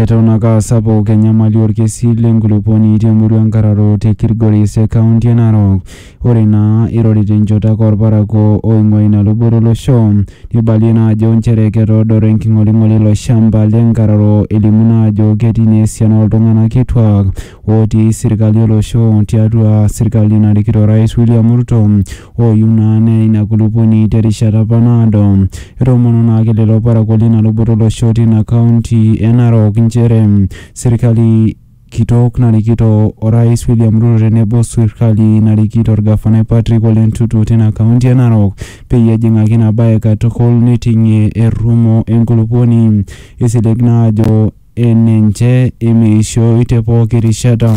Eton ake aa sapuk enyamali olkesi le nkulupuoni te murua Nkararo te Kilgoris e kaunti e Narok. Ore naa eirori te nchoto ake olparakuo oing'ua ina luboto o losho, neibalie naa ajo nchere ketoodoro enking'oling'oli ilo shamba le Nkararo elimu naa ajo ketii naa esiana oo ltung'ana kituak ootii sirkali o losho tiatua sirkali narikito orais William Ruto ooyiu naa neya ina kulupuoni te rishata apa naado. Etoomonuo naake lelo parakuo leina luboto olosho teina kaunti e Narok nchere sirkali kitok narikito Orais William Ruto tenebo o sirkali narikito Olgafanai Patrick Ole Ntutu teina kaunti e Narok peyie ejing'aki ina bae katukul neiting'ie errumo e nkulupuoni eisilig naa ajo enenche emeishoi te pooki rishata.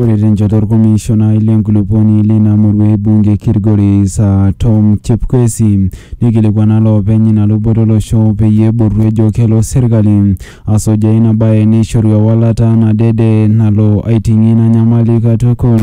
Ore tenchoto olkomishonai lenkulupuoni leina murua e bunge e Kilgoris aa Tom Chepkwesi neikilikuana loopeny ina luboto olosho peyie ebotu ejo kelo serkali asujaa ina bae neishoru ewalata nadede nalo aiting'ie ina nyamali katukul.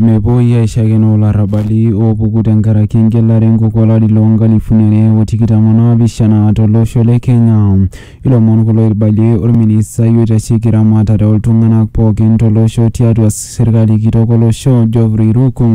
Mepuoi aishakenoo larrabali oopuku tenkaraki engelare enkok olari loo nkalifuni are o tikitam o naapishana to losho le Kenya. Ilomon kulo oibalie olministai oitasheki ramatare o ltung'anak pookin to losho tiatua serkali kitok o losho Geoffrey Ruku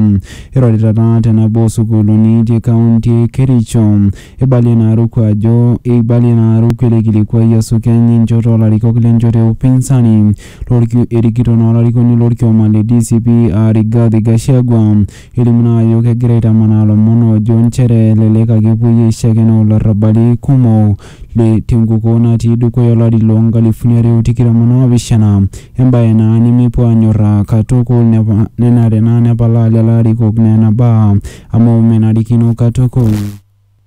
eirorita taa te nabo oo sukuuluni te kaunti e Kericho. Eibalie naa Ruku ajo eibalie naa Ruku ele kilikuai asukeny enchoto oo larikok le nchoto e upinsani. Lorkiu erikito naa olarikoni lorkioma le DCP aa Rigathi Gachagua. Elimu naa ajo kegira aitamanaa lomon oojo nchere elelek ake epuoi aishakenoo larrabali kumok le tenkukuo natii dukuya olari loo nkalifuni are o tikitam o naapishana, embae naa nemepuo aanyorraa katukul nepa nenare naa nepalaa lelo arikok nena baa amu menarikino katukul.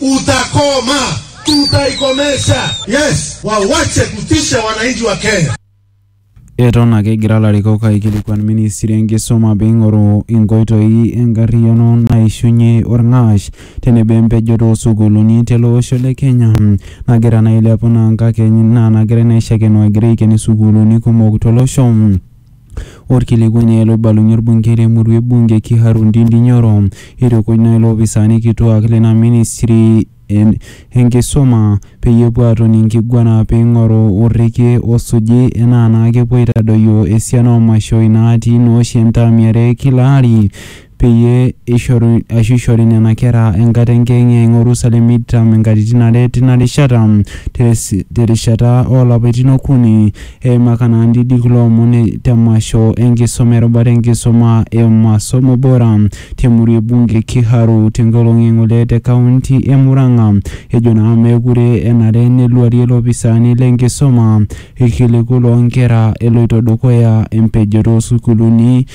utakoma, tutaikomesha. Yes, wawache kutisha wananchi wa Kenya. Eton ake egira larikok aikilikuan ministri enkisuma peing'oru inkoitoi enkarriyiano naishunye orng'ash tenebo empejoto oosukuuluni tele osho le Kenya nagira naa ailepu naa nkakeny naa nagira naa aishakeno egira aiken isukuuluni kumok tolosho. Olkilikuai naa ele oibalunye olbungei le murua e Bunge Kiharu Ndindi Nyoro eitukuj naa iloopisaani kituaak lena ministri e enkisuma peyie epuo aatoni enkiguana pee eing'oru orrekie osuji enaa naa kepuo aitadoyio esiana oo mashoi naatii naa oshi entaam e are e kila ari peyie eishoru ashu eishori nena kera enkata enkiyeng'iyeng' Orusalem eitam inkatitin are tina rishata. Te rishata oo lapaitin okuni, eimaka naa ndidi kulo omon te mmasho enkisoma erubata enkisoma e Masomo Bora te murua e Bunge Kiharu te nkolong e ng'ole te kaunti e Murang'a. Ejo naa meekure enare neluarie ilopisaani le nkisoma ilkiliku loo nkera eloito dukuya empejoto oo sukuuluni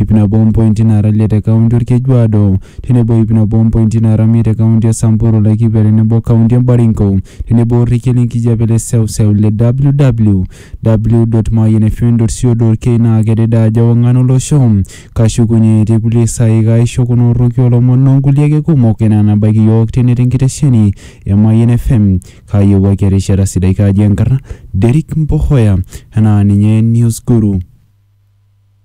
iip nabo ompointi naara ile te kaunti Olkejuado tenebo iip nabo ompointi naara miet te kaunti e Samburu, Laikipia tenebo kaunti e Baringo tenebo orrekie le nkijape le seuseu le www.mayianfm.co.ke naa kedede ajo ewang'an olosho. Kashukunye etii kulie saai kaaisho kuna orroki oo lomon o nkulie ake kumok enaa nabaiki iyiook tene te nkitesheni e Mayian FM. Kaayewuaki erishata sidai kaaji enkarna Derrick Mbohoya enaa ninye Newsguru.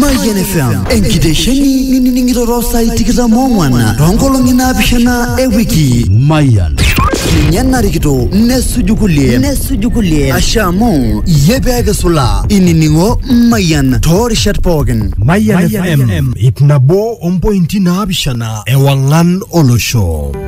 Mayian FM enkitesheni nining'ito too saai tikitam oong'wan too nkolong'i naapishana e wiki. Mayian. Ninye narikito nesuju kulie nesuju kulie asha amu iyie pee kisulaa inining'o Mayian too rishat pookin. Mayian FM ip nabo ompointi naapishana ewang'an olosho.